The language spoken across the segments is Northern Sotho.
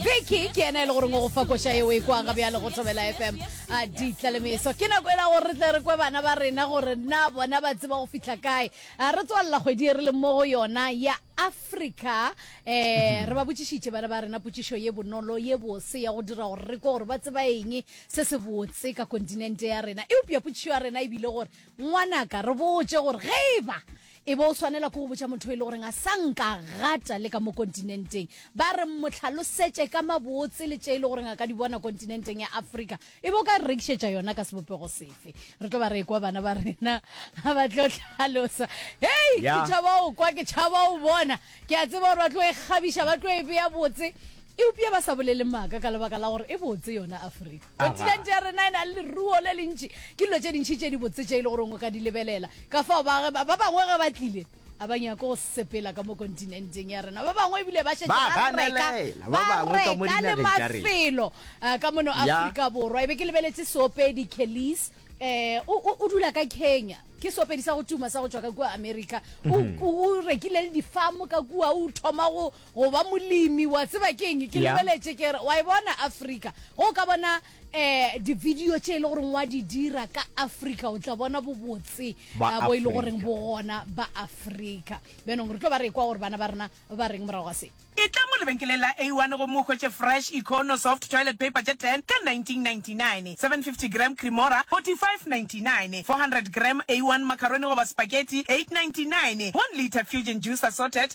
beke ke ena e le goreng o go fa koša eo e kwang ga bjale go thobela fm a ditlalemeso ke nako e la gore re tle re kwe bana ba rena gore na bona ba tseba go fitlha kae a re tswalela kgwedi e re leng mo go yona ya africa um re ba botšišitše bana ba rena potšišo ye bonolo ye bose ya go dira gore re kwe gore ba tseba eng se se botse ka kontinente ya rena eupša potšišo ya rena e bile gore ngwanaka re botse gore ge e ba E be o swanela ke go botša motho yo e le goreng a sa nka gata le ka mo kontinenteng, ba re mmotlhalosetše ka mabotse le tše e le goreng a ka di bona kontinenteng ya Afrika. E be o ka re rekišetša yona ka sebopego sefe? Re tlo ba re ekwa bana ba rena ga ba tlo hlalosa. Hei! Ke tšhaba go kwa, ke tšhaba go bona. Ke a tseba gore ba tlo e kgabiša, ba tlo e bea botse, eupša ba sa bolele maaka ka lebaka la gore e botse yona Afrika. Kontinente ya rena e na le leruo le lentši. Ke dilo tše dintši tše di botse tše e le goreng o ka di lebelela. Ka fao baagi ba bangwe ge ba tlile, a ba nyake go sepela ka mo kontinenteng ya rena. Ba bangwe ebile ba šetše ba reka ba reka le mafelo eh, ka mono Afrika Borwa. E be ke lebeletše seopedi Kelly's eh o, o, o dula ka kenya ke seopedi sa go tuma sa go tšwa ka kua america o, mm. o rekile le difamo ka kua o thoma go, go ba molemi wa tseba ke eng ke Yeah. lebeletše ke re wa e bona africa go ka bona um divideo tše e le goreng wa di dira ka africa o tla bona bobotse Ba eh, bo e le Africa. goreng bo gona ba africa bjanong re tlo ba re kwa gore bana ba rena ba reng morago ga se e tla mo lebenkeleng la a1 gomme o hwetše fresh econo soft toilet paper tše 10 ka 1999 750 gram cremora 4599 400 gram a1 macaroni goba spaghetti 899 1 litre fusion juice assorted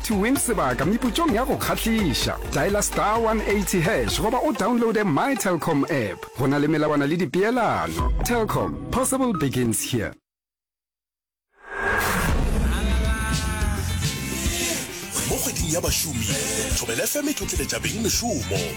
To win sebaka meputšong ya go kgahliša, dialer star 180 hash goba o downloade My Telkom app. Go na le melawana le dipeelano. Telkom, possible begins here. Mo kgweding ya bašomi, Thobela FM e tlotleletša beng mešomo.